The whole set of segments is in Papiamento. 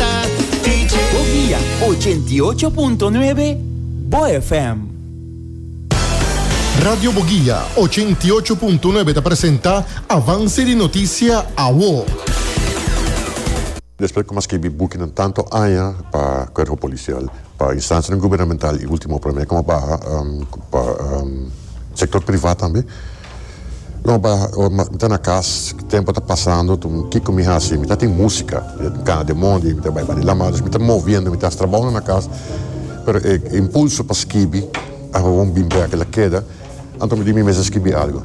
ta DJ. Bo via ochenta i ocho punto nuebe Bo FM. Radio Boguia ochenta i ocho punto nuebe ta presenta Avance di Noticia Awo. Despues cu m'a scribi bukinan tanto aña pa Cuerpo Policial, pa instancianan gubernamental y ultimo pa mi como baha pa sector privat tambe, No pa mi ta na cas tempo ta pasando kico mi haci mi ta tin musica cana den mondi mi ta bay bani lama dus mi ta moviendo mi ta haci trabaonan na cas pero e impulso pa skibi awor bin bek el a keda anto mi di mi mes a skibi algo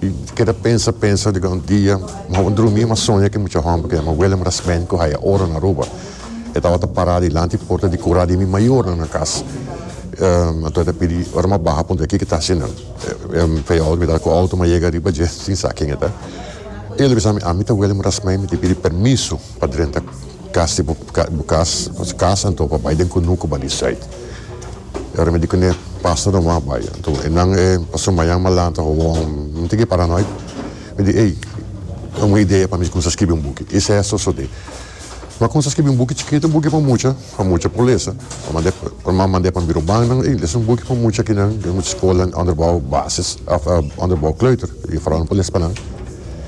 y keda pensa pensa diga un dia mi awor drumi mi a soña cu e mucha homber cu a yama Willem Rasmijn cu haya oro na Aruba e tabata para dilanti porta di cura di mi mayornan na cas anto e ta pidi ora mi a baha puntra kico e ta haci nan. Payal mi ta cu auto ma yega riba dje sin sa ken e ta. E lo bisa mi, ami ta wele mudas mei mi tin pidi permiso pa drenta cas di bo cas, nos cas anto pa bay den cunu cu bani site. E ora mi di cune pasa no mas bay. Anto e nan e paso mayan malan ta hoon, mi tin ki para noi. Mi di ey, un idea pa mi cuminsa scribi un buki. I seso so di. Ma cuminsa scribi un buki chikito, un buki pa mucha. pa mucha pulesa pa mand'é pa ma mand'é pa biro bannan i leson buki pa mucha kinan den mucha skolan onderbou basis òf onderbou kleuter i fora nan por les pa nan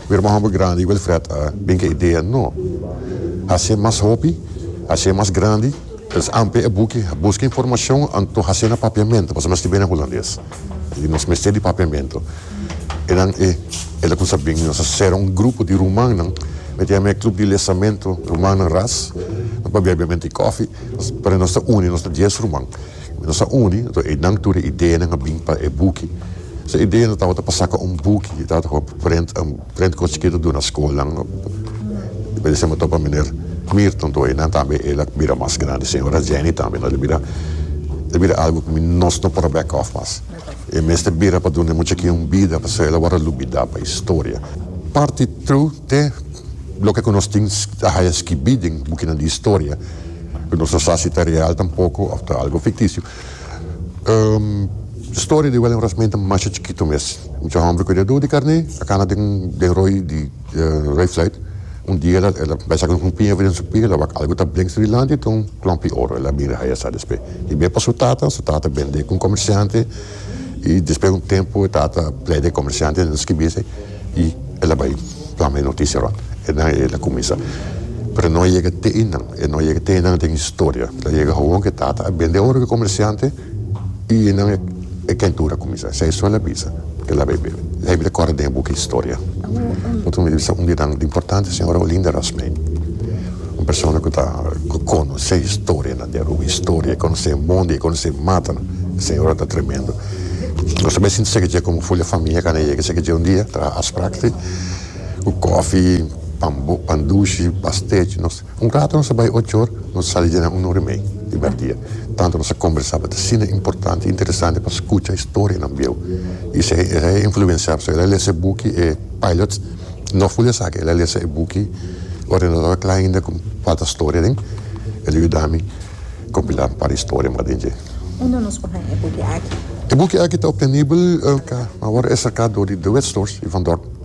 biro mas homber grandi Wilfred a bin k'e idea no hasié mas hopi hasié mas grandi entonces amplia e buki buska informashon anto hasié nan papiamentu pasobra nan skibié nan hulandes i nos mester di papiamentu. Enan e el a cuminsa bini. Nos a cera un grupo di rumannan, mete a mea club di lesamento rumannan ras, nos por bebe obviamente e cofi, pero nos ta uni, nos ta dies ruman, y nos a uni, enton e nan tur e ideanan a bini pa e buki. So e ideanan tabata pa saca un buki, e tabata pa prent, un prent cos chikito duna scolnan, por decirme topa meneer Mirton, topa e nan tambe el a bira mas grandi, señora Jenny tambe, enton el a bira, el a bira algo cu nos no por a back off mas. E mester bira pa duna e muchakinan un bida pasobra el a wòrdu lubidá pa historia. Parti tru te loke ku nos tin ta haya skibí den bukinan di historia, ku nos no sa si ta real tampoko òf ta algu fiktisio. Historia di Willem Rasmijn ta masha chikitu mes. Mucha hòmber ku e dedo di karné a kana den roi di. Ray Flight un dia ela ela bai saka un piña den su pia ela wak algu ta brengs dilanti ta un klompi oro ela mira haya sa despe i bia pa su tata su tata bende ku un komersiante i despe un tempu e tata pleide e komersiante nan skibi esei i ela bai plama e notisia rònt e nan e ela kuminsa pero no a yega te i nan e no a yega te i nan den historia lo yega awor ku e tata a bende oro ku e komersiante. I e nan e kentura kuminsá. Sa e son a bisa, e la bai bebe. La hende ta kòrda den e buki historia. Bo ta mira bisa un di e nan importante ta señora Olinda Rasmijn. Un persona ku ta ku konosé historianan di Aruba. Historia, e konosé e mondi, e konosé e matanan. E señora ta tremendo. Nos ta bai sinti sèki dje komo Fulya Famia kanda yega sèki dje un dia traha afspraak si ku kòfi, pan dushi, pastèchi. Nos. Un rato nos a bai ochor, nos a sali djena un ora i mei di mèrdia. Tantu nos a kombersaba ta asina importante i interesante pa skucha historianan bieu. I esei e a influensiaba so el a lesa e buki e Pilots. No ful di esaki, el a lesa e buki ora e no tabata kla ainda ku falta storia den. El a yuda mi kompilá un par di storia mas den dje. Unda nos por haña e buki aki? E buki aki ta optenibel ka awor e saká dor di Dewet Stores i Van Dorp.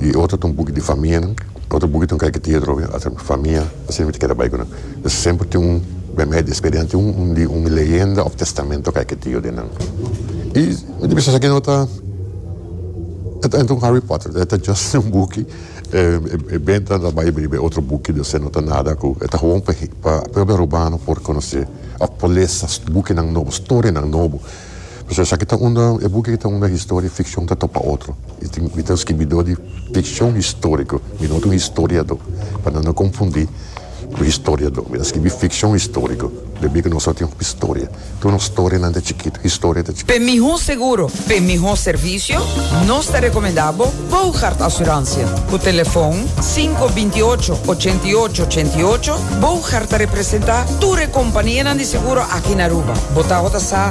y otro ta un buki di famia nan otro buki ta un kaikitia otro bes ata famia asi mi ta keda bai ku nan entonces semper tin un bem bai di experiencia tin un di un leyenda of testamento kaikitio di nan y mi ta bisa esaki no ta e ta un Harry Potter e ta just un buki e benta nan ta bai bay bay otro buki di ose no ta nada ku e ta gewoon pa pa propio Arubano por conoce of por lesa buki nan nobo storia nan nobo. Pasobra esaki ta unda, e buki aki ta unda historia y ficcion ta topa otro. Mi tin, mi ta un scribidor di ficcion historico, mi no ta un historiador, pa nan no confundi cu historiador. Mi ta scribi ficcion historico, pasobra cu nos a tin hopi storia. Tur nos storianan ta chikitu, historia ta chikitu. P'e miho seguro, p'e miho servicio, nos ta recomenda bo Boogaard Assurantia. Cu telefon sinku binti y ocho, ochenta y ocho, ochenta y ocho, Boogaard ta representa tur e companianan di seguro aki na Aruba. Bo ta ora ta sa